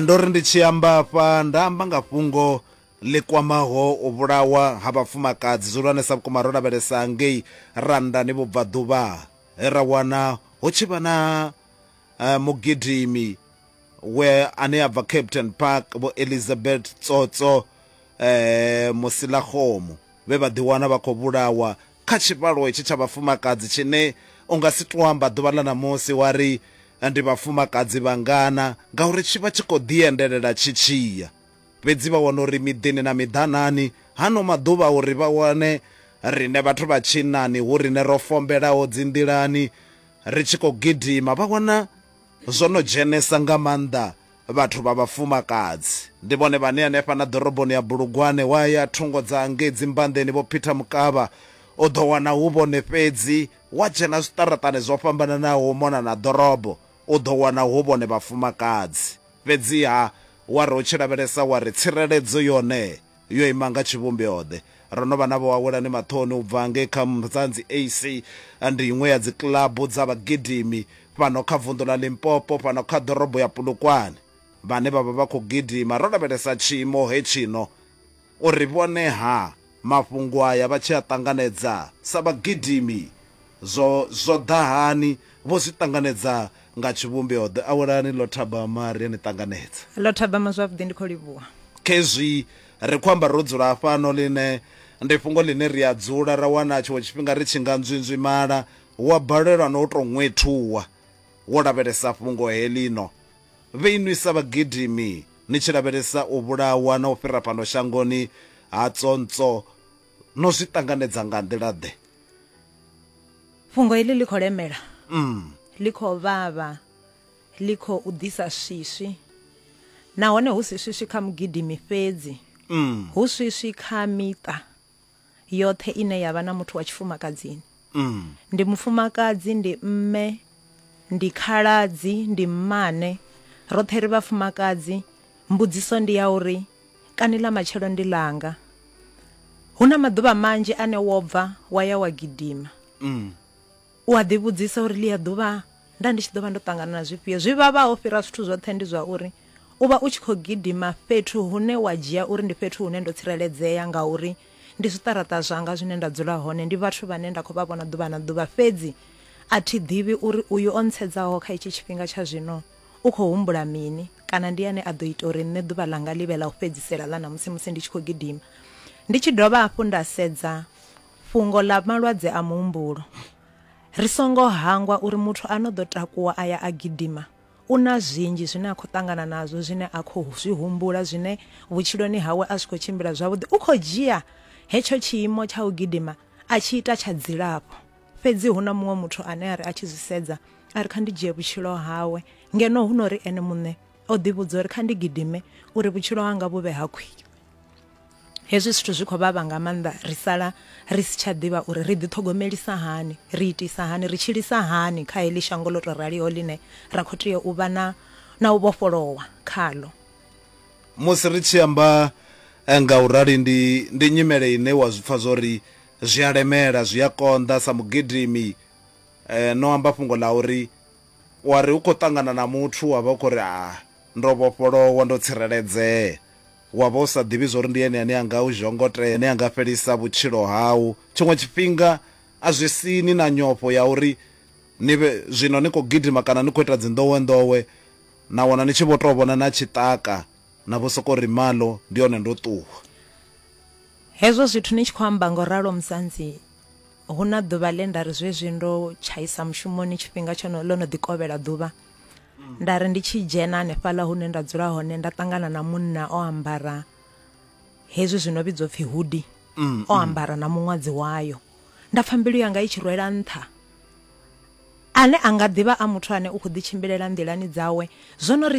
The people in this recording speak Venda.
ndo ri ndi tshi amba hafha nda amba nga fhungo ḽi kwamaho u vhulawa ha vhafumakadzi zwi hulwanesa vhukuma ro lavhelesa ngei randani vhubvaḓuvha he ra wana hu tshi vha na uh, mugidimi we ane a bva captain park vho elizabeth tsotso eh musilakhomo vhe vha ḓiwana vha khou vhulawa kha tshivhalo hetshi tsha vhafumakadzi tshine u nga si tou amba ḓuvha ḽa ṋamusi wa ri ndi vhafumakadzi vhangana ngauri tshi vha tshi khou ḓiendelela tshi tshi ya. Fhedzi vha wana uri miḓini na miḓanani hano maḓuvha uri vha wane riṋe vhathu vha tshinnani hu riṋe ro fombelaho dzinḓilani ri tshi khou gidima vha wana zwo no dzhenesa nga maanḓa Vhathu vha vhafumakadzi ndi vhone vhane hanefha na ḓoroboni ya Bulugwane wa ya thungo dza hangei dzimbanḓeni vho Peter Mukavha u ḓo wana hu vhone fhedzi, wa dzhena zwiṱaraṱani zwo fhambananaho u mona na ḓorobo u ḓo wana hu vhone vhafumakadzi. Fhedziha wa ri u tshi lavhelesa wa ri tsireledzo yone Yo ima nga tshivhumbeo-ḓe? Ro no vha na vhoawelani maṱoni u bva ngei kha Mzanzi AC. Ndi iṅwe ya dzikilabu dza vhagidimi fhano kha vunḓu ḽa Limpopo, fhano kha ḓorobo ya Polokwane, vhane vha vha vha khou gidima. Ro lavhelesa tshiimo hetshino uri vhone-ha mafhungo aya vha tshi a ṱanganedza sa vhagidimi. Zwo zwo ḓa hani? Vho zwi ṱanganedza nga tshivhumbeo-ḓe. Awelani, ḽo thabama, ri a ni ṱanganedza. Ḽo thabama zwavhuḓi, ndi khou livhuha. Khezwi ri khou amba ro dzula hafhano, ḽine ndi fhungo ḽine ri a dzula ra wana tshiṅwe tshifhinga ri tshi nga nzwinzwimala, wa balelwa na u tou ṅwethuwa wo lavhelesa fhungo heḽino. Vhe inwi sa vhagidimi ni tshi lavhelesa u vhulawa na u fhira fhano shangoni ha tsontswo no zwi ṱanganedza nga nḓila-ḓe fhungo heḽi ḽi khou lemela mm. ḽi khou vhavha ḽi khou ḓisa swiswi nahone hu si swiswi kha mugidimi fhedzi mm. hu swiswi kha miṱa yoṱhe ine ya vha na muthu wa tshifumakadzini Ndi mufumakadzi, ndi mme, ndi khaladzi, ndi mmane, roṱhe ri vhafumakadzi. Mbudziso ndi ya uri kani ḽa matshelo ndi ḽanga? Hu na maḓuvha manzhi ane wo bva wa ya wa gidima, u a ḓivhudzisa uri ḽia ḓuvha nda ndi tshi ḓo vha ndo ṱangana na zwifhio. Zwi vhavhaho u fhira zwithu zwoṱhe ndi zwa uri u vha u tshi khou gidima fhethu hune wa dzhia uri ndi fhethu hune ndo tsireledzea ngauri Ndi zwiṱaraṱa zwanga zwine nda dzula hone, ndi vhathu vhane nda khou vha vhona ḓuvha na ḓuvha. Fhedzi a thi ḓivhi uri uyu o ntshedzaho kha itshi tshifhinga tsha zwino u khou humbula mini kana ndi ene a ḓo ita uri nṋe ḓuvha ḽanga ḽi vhe ḽa u fhedzisela ḽa ṋamusi musi ndi tshi khou gidima. Ndi tshi dovha hafhu nda sedza fhungo ḽa malwadze a muhumbulo, ri songo hangwa uri muthu a no ḓo takuwa a ya a gidima, U na zwinzhi zwine a khou ṱangana nazwo, zwine a khou zwi humbula, zwine vhutshiloni hawe a zwi khou tshimbila zwavhuḓi. U khou dzhia hetsho tshiimo tsha u gidima a tshi ita tsha dzilafho. Fhedzi hu na muṅwe muthu ane a ri a tshi zwi sedza a ri, Kha ndi dzhie vhutshilo hawe. Ngeno huno ri ene muṋe o ḓivhudza uri, Kha ndi gidime uri vhutshilo hanga vhu vhe ha khwine. Hezwi zwithu zwi khou vhavha nga maanḓa, ri sala ri si tsha ḓivha uri ri ḓiṱhogomelisa hani, ri itisa hani, ri tshilisa hani kha heḽi shango ḽo tou raliho ḽine ra khou tea u vha na na u vhofholowa khaḽo. Musi ri tshi amba nga u rali, ndi ndi nyimele ine wa zwi pfa zwa uri zwi a lemela, zwi a konḓa. Sa mugidimi, no amba fhungo ḽa uri. Wa ri u khou ṱangana na muthu wa vha u khou ri, A ndo vhofholowa, ndo tsireledzea. Wa vha u sa ḓivhi zwa uri ndi ene ane a nga u zhongotea, ane a nga fhelisa vhutshilo hau. Tshiṅwe tshifhinga a zwi sii ni na nyofho ya uri ni vhe zwino ni khou gidima kana ni khou ita dzinḓowenḓowe na wana ni tshi vho tou vhona na tshiṱaka na vho sokou ri, Malo, ndi hone ndo ṱuwa. Hezwo zwithu ni tshi khou amba nga u ralo Musanzi. Hu na ḓuvha ḽe nda ri zwezwi ndo tshaisa mushumoni tshifhinga tsho no ḽo no ḓi kovhela ḓuvha nda ri ndi tshi dzhena hanefhaḽa hune nda dzula hone nda ṱangana na munna o ambara hezwi zwino vhidzwa upfhi hudi mm, o mm. ambara na muṅwadzi wayo nda pfha mbilu yanga i tshi rwela nṱha ane a nga ḓivha a muthu ane u khou ḓitshimbilela nḓilani dzawe zwo no ri